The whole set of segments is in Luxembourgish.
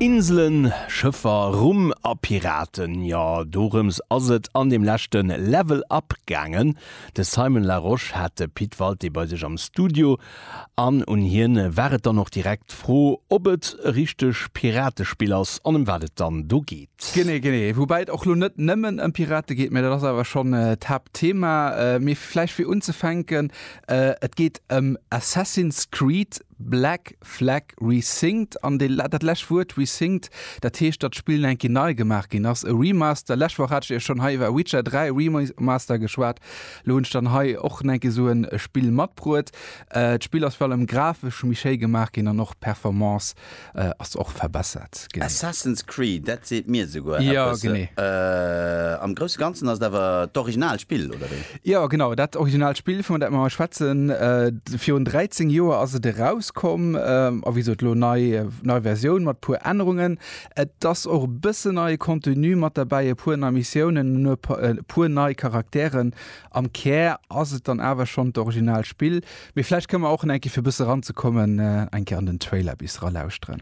Inselen, Schëffer, Rum a Piraten, jo dorëms ass et an deem leschte Level Up gaangen. De Simon Larosche hat de Pit Walté bei sech am Studio an un hien war et dann och direkt d'Fro, ob et e richteg Piratespill ass an ëm wat et dann do geet. Genee, genee, woubäi et och lo net nëmmen ëm Pirate geet, mä dat ass awer schonn d'Haaptthema. Mee vläicht fir unzefänken, Et geet ëm Assassin's Creed. Black Flag Resynced an dee dat lescht Wuert resynced, dat heescht, datt d'Spill eng Kéi nei gemaach ginn ass, e Remaster. Lescht Woch hat ech Iech schonn hei iwwer Witcher 3 Remaster geschwat, elo hunn ech dann hei och eng Kéi esou e Spill matbruet. D'Spill ass virun allem grafesch méi schéi gemaach ginn an och d'Performance Ass och verbessert ginn. Assassin's Creed, dat seet mir souguer eppes. Jo, genee. Am grousse Ganzen ass et awer d'original Spill, oder wéi? Jo, genau, dat original Spill, vun dat mir hei schwätzen. Virun 13 Joer ass et erauskomm. A wéi gesot, elo nei, nei Versioun mat e puer Ännerungen. Et ass och e bëssen neie Contenu mat derbäi, e puer nei Missiounen, e puer nei Charakteren. Am Kär ass et dann awer schonn d'original Spill, mee vläicht kënne mer och enke fir e bësse ranzekommen eng Kéier an den Trailer bis ralauschteren.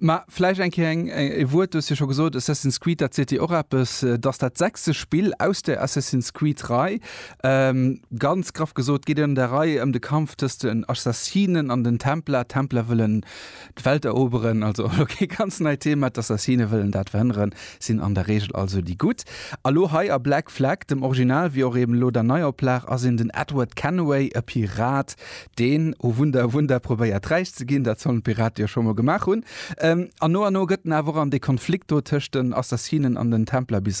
Mä vläicht eng Kéier e Wuert, du hues jo scho gesot, Assassin's Creed, dat seet dir och eppes, et ass dat sechste Spill aus der Assassin's Creed-Rei. Ganz graff gesot geet et an där Rei ëm de Kampf tëscht den Assassinen an den Templer. D'Templer wëllen d'Welt eroberen, also elo kee ganz neit Thema. D'Assassine wëllen dat verhënneren, sinn an der Reegel also déi Gutt. A lo hei a Black Flag, dem Original wéi och eben elo der Neioplag, ass een den Edward Kenway, e Pirat, Deen O Wunder, O Wunder probéiert räich ze ginn, dat sollen d'Pirate jo scho mol gemaach hunn. An no an no gëtt en awer och an dee Konflikt do tëscht den Assassinen an den Templer bis